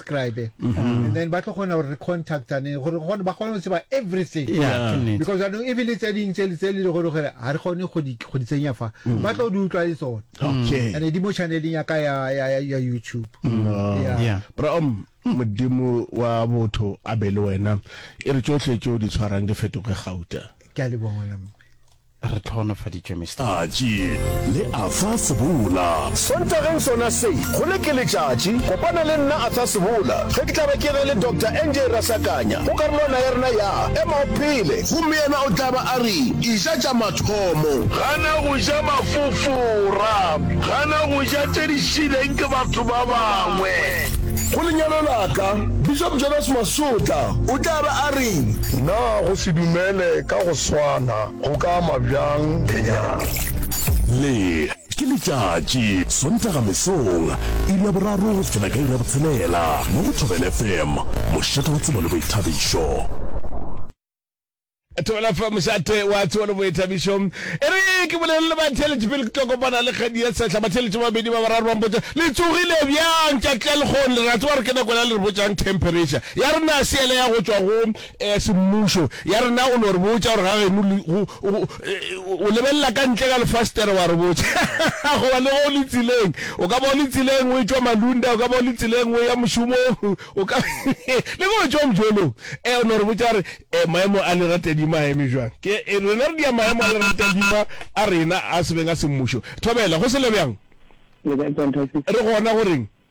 subscribe mm-hmm. and then ba tlo kgona gore re contactane gore gone ba kgone go tseba everything yeah, yeah. because anong e bile tse ding tse le tse le le gore gore ga re kgone go di go di tsenya fa mm. ba tlo di utlwa le tsone okay and di mo channeleng ya ka ya ya ya YouTube mm. yeah. yeah bro um modimo wa botho a be le wena e re tsotlhe tso di tshwarang di fetoge gauta ke a le bona Re tlhohonofaditšwe, Mister. Tšatši le Arthur Sebola. Sontageng sona se, go le ke letšatši, kopana le nna Arthur Sebola ge ke tla ba ke ge le Doctor NJ Rasakanya go karolwana ya rena ya Ema o Phele. Gomme yena o tla ba a re, Eja tša mathomo. Gana go ja mafofora. Gana go ja tše di šileng ke batho ba bangwe. Go lenyalo la ka, Bishop Jonas Masotla o tla ba a re. Na go se dumele ka go swana? A go ka ama bjang lenyalo? Le ke letšatši, Sontaga mesong, iri ya boraro go fihlela ka iri ya botshelela, mo go Thobela FM, mošate wa tsebo le boithabišo. Thobela FM, mošate wa tsebo le boithabišo. E re ke bolele le batheeletši pele ke tlo kopana le kgadi ya sehla. Batheeletši ba babedi ba bararo ba mpotša, Le tsogile bjang? Ke a tlelgong, Lerato wa re ke nako ya le re botšang temperature ya rena seele ya go tšwa go ya semmušo ya rena o no re botša gore ga geno le, go, go, o lebelela ka ntle ka lefastere wa re botša goba le ge o le tseleng, o ka ba o le tseleng o etšwa Malunda, o ka ba o le tseleng o ya mošomong, o ka le ge o etšwa mojolong, e o no re botša gore e, maemo a leratadima a eme bjang. Ke e, rena re dia maemo a leratadima a rena a sebeng a semmušo. Thobela, go se le bjang? Re gona go reng?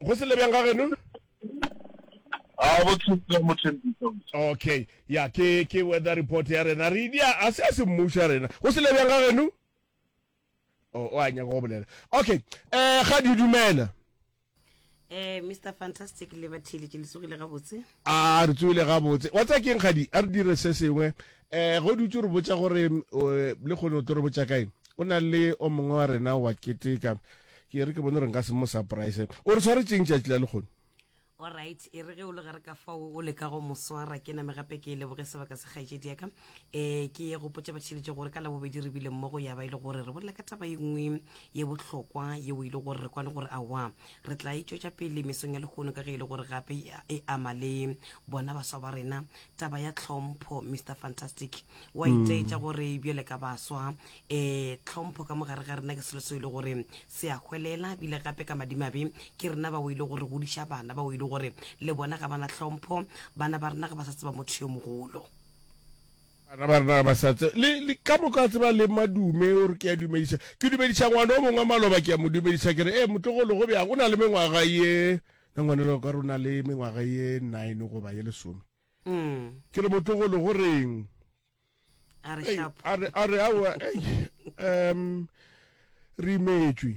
go se le bjang ga geno a go thusa mothembiso okay ya ke ke weather report ya rena re dia a se a se mmuša rena go se le bjang ga geno o o a nyaka go bolela okay eh ga di dumela Eh, Mr. Fantastic le bathile ke lesogile gabotse. A re tsoele gabotse. Wa tseba ke'ng kgadi? A re dire se sengwe. Eh, ge o dutše o re botša gore o, lekgone o tlo re botša kae? O na le o mongwe wa rena wa keteka. Ke e re ke bone gore nka se mo surprise. O re swaretše'ng tšatši la lekgone? All right, e re ge o le gare ka fao o leka go mo swara, ke name gape ke leboge sebaka sa kgaetšedi ya ka. um ke gopotša batheletše gore ka labobedi re bile mmogo ya ba e le gore re bolela ka taba e nngwe ye bohlokwa yeo e le gore re kwane gore awa re tla e tšwetša pele mesong ya lehono ka ge e le gore gape e, e ama le bona baswa ba rena taba ya tlhompho mr fantastic wa mm. itaetša gore bjale ka baswa um tlhompho ka mogare ga rena ke selo seo e le gore se a hwelela bile gape ka madimabe ke rena bao e le gore godiša bana bao e le gore le bona ga bana tlhompho bana ba rena ga ba sa tseba motho yo mogolo Bana ba rena ba sa tse, le, le ka moka tseba le madume, o re ke a dumediša. Ke dumediša ngwana o mongwe wa maloba, ke a mo dumediša, ke re, ee, motlogolo, go bjang? O na le mengwaga ye, na ngwanelo ka rona le mengwaga ye nine goba ye lesome. Mm. Ke re, motlogolo, go reng? A re, shapo. A re, a re, aowa, ei, um, re imetšwe.